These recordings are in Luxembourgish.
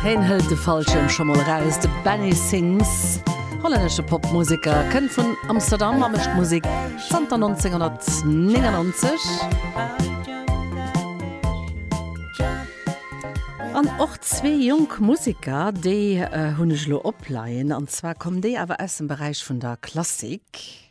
Heen hëlt de Fallschierm scho mol eraus. De Benny Sings, hollännesche Popmuseker, kënnt vun Amsterdam a mécht Musek zanter 1999. An och zwee jonk Museker, déi hunn ech elo opleien, an zwar kommen déi awer aus dem Beräich vun der Klassik.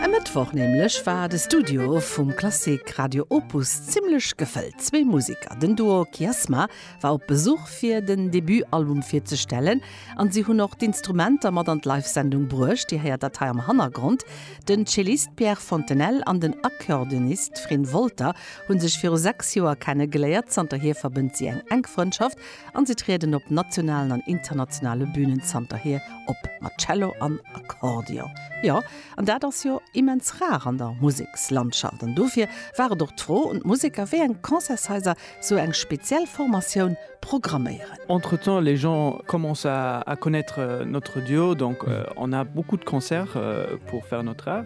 E Mëttwoch nämlech war de Studio vum Klassik Radio Opus zimmlech gefëllt. Zwee Museker, den Duo Kiasma, war op Besuch fir den Debutalbum virzestellen an si hunn och d'Instrumenter mat an d'Live-Sendung bruecht. Dir héiert dat hei am Hannergrond. Den Cellist Pierre Fontenelle an den Accordeonist Frin Wolter hu sech viru sechs Joer kenne geléiert. Zanterhier verbënnt si eng enk Frëndschaft An se trieden op nationalen an internationale Bünen zanterhier op mat Cello an Akkordeon. Jo, an dat ass jo immens rar an der Musekslandschaft. An dofir war et och d'Fro un d'Museker, wéi eng Concertshaiser sou eng speziell Formatioun programméieren. Entretemps, les gens commencent à connaître notre duo, donc on a beaucoup de concerts pour faire notre art.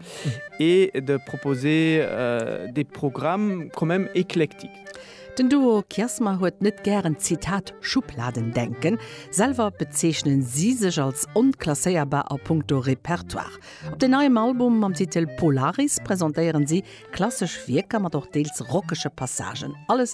et de proposer des programmes quand même éclectiques. Den Duo Kiasma huet net gären Zitat Schubladendenken. Selwer bezeechnen si sech als onklasséierbar a punkto Repertoire. Op den neiem Album mam Titel Polaris presentéieren si klassesch Wierker mat och deels rockege Passagen. Alles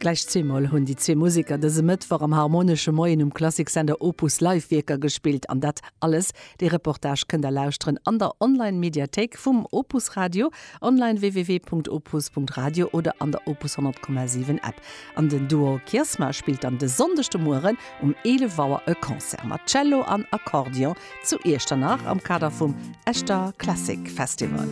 Gläich zweemol hunn déi zwee Museker dëse Mëttwoch am Harmonesche Moien um Klassiksender Opus Live Wierker gespillt. An dat alles, dee Reportage kënnt der lauschteren an der Online-Mediathéik vum Opus Radio, online www.opus.radio, oder an der Opus 100,7 App. An den Duo Kiersma spillt dann de Sonndeg de Mueren um 11 Auer e Concert mat Cello an Accordeon zu Iechternach am Kader vum Echter Classic Festival.